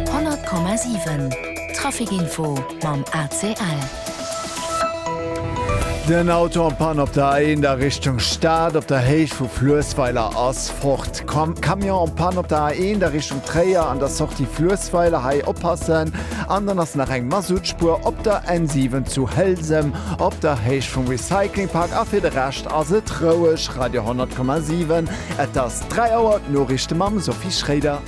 100,7 Trafic-Info mam ACL. Den Auto en panne op der A1 a Richtung Stad, op der Héicht vu Fluessweiler ass fort. Camion en panne op der A1 a Richtung Tréier an der Sortie Fluessweiler, hei oppassen. An dann ass nach eng Mazoutspur op der N7 zu Hëlsem, op der Héicht vum Recycling-Park. A fir de Rescht ass et roueg. Radio 100,7 Et ass 3 Auer, d'Noriichte mam Sophie Schréider.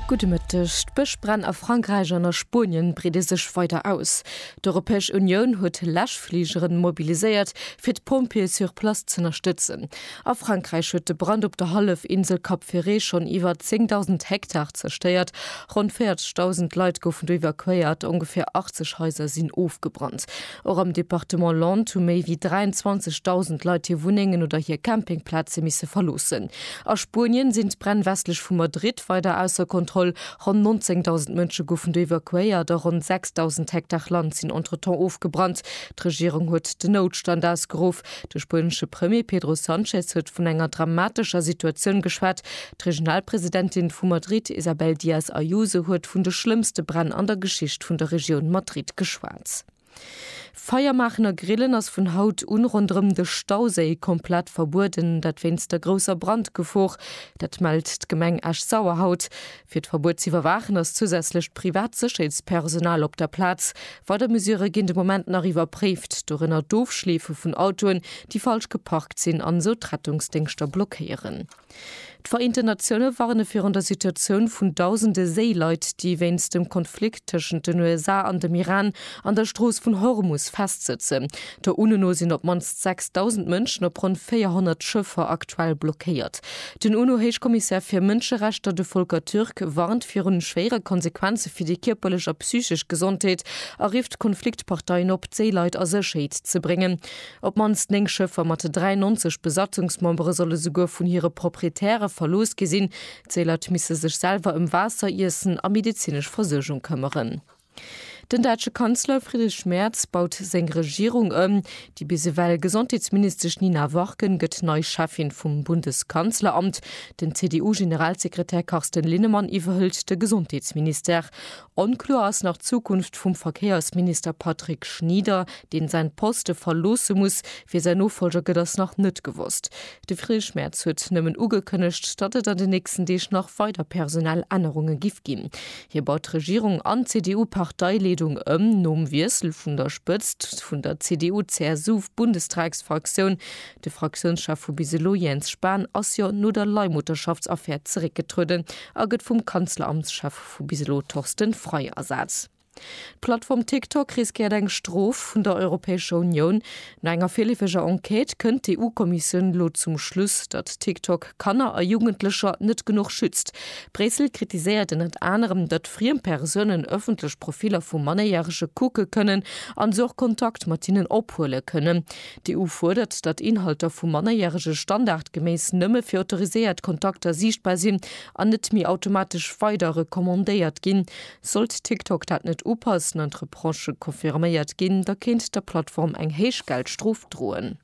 Gudde Mëtteg. D'Bëschbränn a Frankräich an a Spuenien breede sech weider aus. D'Europäesch Unioun huet Läschfligeren mobiliséiert, fir d'Pompjeeë sur place z'ënnerstëtzen. A Frankräich huet de Brand op der Hallefinsel Cap Ferret schonn iwwer 10.000 Hektar zerstéiert. Ronn 40.000 Leit goufen do evakuéiert, ongeféier 80 Haiser sinn ofgebrannt. Och am Departement Landes hu méi wéi 23.000 Leit hir Wunnengen oder hir Campingplaze misse verloossen. A Spuenien sinn d'Bränn westlech vu Madrid weider ausser Kontroll. Ronn 19.000 Mënsche goufen do evakuéiert a ronn 6.000 Hektar Land sinn entretemps ofgebrannt. D'Regierung huet den Noutstand ausgeruff. De spuenesche Premier Pedro Sanchez huet vun enger dramatescher Situatioun geschwat. D'Regionalpresidentin vu Madrid Isabel Díaz Ayuso huet vun de schlëmmste Bränn an der Geschicht vun der Regioun Madrid geschwat. Feier maachen a grillen ass vun haut un ronderëm de Stauséi komplett verbueden, dat wéinst der grousser Brandgefor. Dat mellt d'Gemeng Esch-Sauer haut. Fir d'Verbuet z'iwwerwaachen ass zousätzlecht privat Sécherheetspersonal op der Plaz. Weider Mesurë ginn de Moment nach iwwerpréift, dorënner d'Ofschleefe vun Autoen, déi falsch geparkt sinn an esou d'Rettungsdéngschter blockéieren. D'Vereenten Natioune warne virun der Situatioun vun dausende Séileit, déi wéinst dem Konflikt tëschent den USA an dem Iran an der Strooss vun Hormus festsëtzen. Der UNO no sinn op d'mannst 6.000 Mënschen op ronn 400 Schëffer aktuell blockéiert. Den UNO-Héichkommissär fir Mënscherechter, de Volker Türk, warnt virun schwéiere Konsequenze fir déi kierperlech a psychesch Gesondheet a rifft d'Konfliktparteien op, d'Séileit a Sécherheet ze bréngen. Op d'mannst 9 Schëffer mat 93 Besatzungsmembere solle souguer vun hire Proprietäre verlooss gi sinn. D'Séileit misse sech selwer ëm Waasser, Iessen a medezinesch Versuergung këmmeren. Den däitsche Kanzler Friedrich Merz baut seng Regierung ëm. Déi bis ewell Gesondheetsministesch Nina Warken gëtt nei Cheffin vum Bundeskanzleramt. Den CDU-Generalsekretär Carsten Linnemann iwwerhëlt de Gesondheetsministère. Onkloer ass nach d'Zukunft vum Verkéiersminister Patrick Schnieder, deen säin Poste verloosse muss. Wie säin Nofollger gëtt ass nach net gewosst. De Friedrich Merz huet nëmmen ugekënnegt, datt et an den nächsten Deeg nach weider personell Ännerunge giff ginn. Hie baut d'Regierung an d'CDU-Parteileedung ëm. Nom Wiessel vun der Spëtzt vun der CDU-CSU-Bundestagsfraktioun, de Fraktiounschef vu bis elo Jens Spahn ass jo no der Leihmutterschaftsaffär zeréckgetrueden a gëtt vum Kanzleramtschef vu bis elo Torsten Frei ersat. D'Plattform TikTok riskéiert eng Strof vun der Europäescher Unioun. No enger virleefeger Enquête kënnt d'EU-Kommissioun elo zum Schluss, datt TikTok Kanner a Jugendlecher net genuch schützt. Bréissel kritiséiert ënnert anerem, datt friem Persounen ëffentlech Profiller vu Mannéierege kucke kënnen an se och Kontakt mat hinnen ophuele kënnen. D'EU fuerdert, datt Inhalter vu Mannerjärege standardgeméiss nëmme fir autoriséiert Kontakter siichtbar sinn an net méi automatesch weider recommandéiert ginn. Sollt TikTok dat net upassen an d'Reprochë confirméiert ginn, da kéint der Plattform eng héich Geldstrof droen.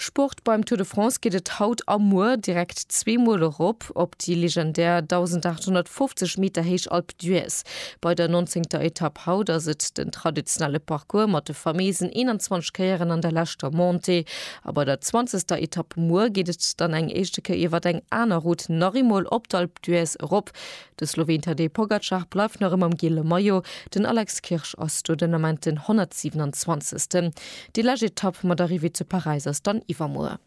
Sport, Beim Tour de France geet et haut a muer direkt zweemol erop op déi legendär 1.850 Meter héich Alpe d'Huez. Bei der nonzéngter Etapp haut ass et den traditionelle Parcours mat de fameesen 21 Kéieren an der leschter Montée. A bei der zwanzegster Etapp muer geet et dann eng éischte Kéier iwwer eng aner Route nach eemol op d'Alpe d'Huez erop. De Slowen Tadej Pogacar bleift nach ëmmer am giele Maillot, den Alex Kirsch ass do den Ament den 127. Déi lescht Etapp mat Arrivée zu Paräis ass dann iwwermuer.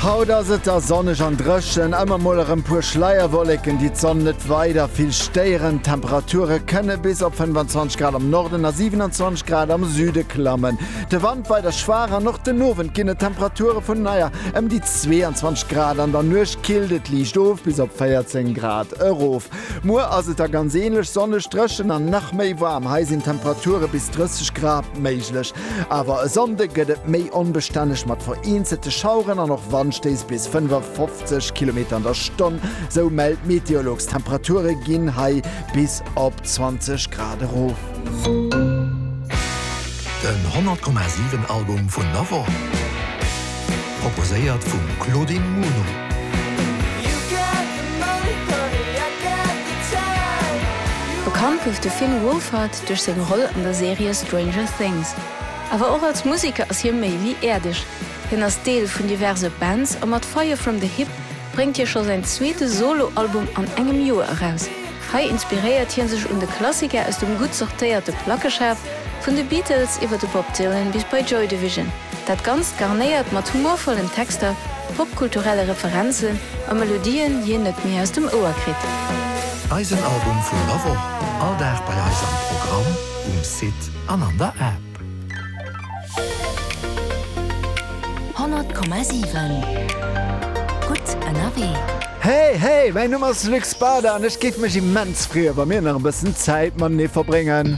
Haut ass et da sonneg an dréchen, ëmmer mol erëm puer Schleierwolleken, déi d'Sonn net weider vill stéieren. D'Temperature kënne bis op 25 Grad am Norden a 27 Grad am Süde klammen. De Wand weider schwaach an och den Owend ginn et Temperature vun ëmmer ëm déi 22 Grad, an der Nuecht killt et liicht of bis op 14 Grad erof. Muer ass et da ganz änlech, sonneg, dréchen an nach méi waarm. Hei sinn Temperature bis 30 Grad méiglech. Awer e Sonnde gëtt et méi onbestänneg mat vereenzelte Schaueren an och Wandstéiss bis 55 Kilometer an der Stonn, sou mellt d'Meteolux. D'Temperature ginn hei bis op 20 Grad erof. Den 100,7 Album vun der Woch. Proposéiert vum Claudine Muno. Bekannt gouf de Finn Wolfhard duerch seng Roll an der Serie Stranger Things. Awer och als Museker ass hie méi wéi äerdeg. Hien ass Deel vun diverse Bands a mat Fire From The Hip bréngt hie scho säin zweete Solo-Album an engem Joer eraus. Hei inspiréiert hie sech un de Klassiker aus dem gutt sortéierte Plackeschaf, vun de Beatles iwwer de Bob Dylan bis bei Joy Division. Dat Ganzt garnéiert mat humorvollen Texter, popkulturelle Referenzen a Melodien, déi een net méi aus dem Ouer kritt. Eisen Album vun der Woch, all Dag bei eis am Programm, um Site an an der App. Honnert Komma siwen, gutt ënnerwee. Hey, hey, mäin Numm ass Luc Spada an ech géif mech immens freeë wa mir nach e bëssen Zäit matenee verbréngen.